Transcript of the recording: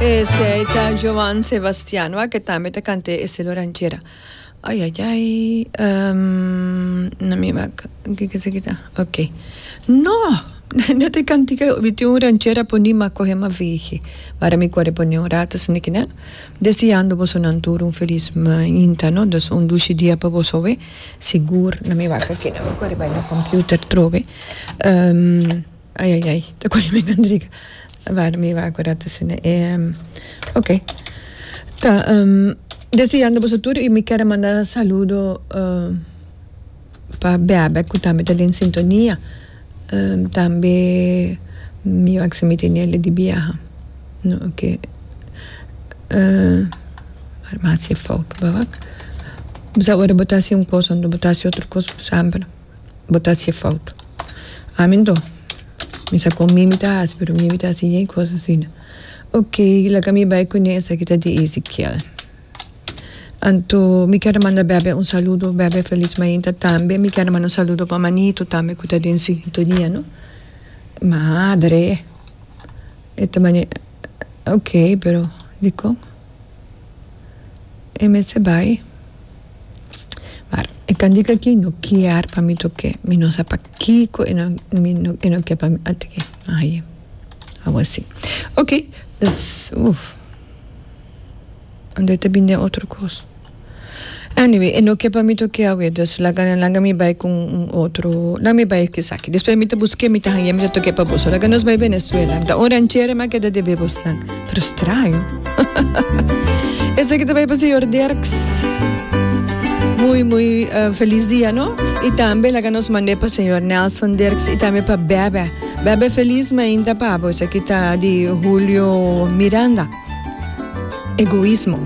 Esey ta Joan Sebastian wak e tambe ta cant'e estilo ranchera ay ay ay na mi wak kiko esaki ta ok no no ta e cantica e obi tin un ranchera poni ma coge ma vege wara mi core pone un rato esaki nan deseando boso nan tur un feliz mainta no dos un dushi dia pa boso aweh sigur na mi wak akinan mi core bai na computer trobe. Ai ai ai ta coge mi Nandriga a wara mi wak un rato asina e ok ta deseando boso tur y mi ker a manda saludo pa bebe cu tambe ta den sintonia tambe mi wak si mi tene ali di biaha no ok farmacia fout ba wak bo sa ora bo ta haci un cos ora bo ta haci otro cos bo sabi no. bo ta hacié fout. Amen to. Mi sa con Mimi ta haci, pero Mimi ta haci yen cos asina. Ok, laga mi bay cune, esaki ta di Ezekiel. Anto mi ker a manda Bebe un saludo, Bebe Feliz Mainta tambe. Mi ker a manda un saludo pa Manito tambe cu ta den sintonia no. Madre! E ta mane, ok, pero dicon? E mester bay? Mar e candika aki no kier pa mi tok'é, mi no sa pakiko e no mi no e no kier pa mi ata ki aye awasí. Ok pues uf ando e ta bini den otro kos. Anyway e no kier pa mi tok'é awe dus laga nan laga mi bai ku un otro laga mi bai esaki despues mi ta busk'é mi ta hañ'é mi ta tok'é pa boso laga nos bai Venezuela ta un ranchera mi a keda deb'é bosnan. Frustrá yo. Eseki ta bay pa señor Dirks. Muy, muy uh, feliz dia, no? Y también la que nos mandé pa señor Nelson Dirks y también pa Bebe. Bebe feliz me inta pabo. Eseki ta di Julio Miranda. Egoísmo.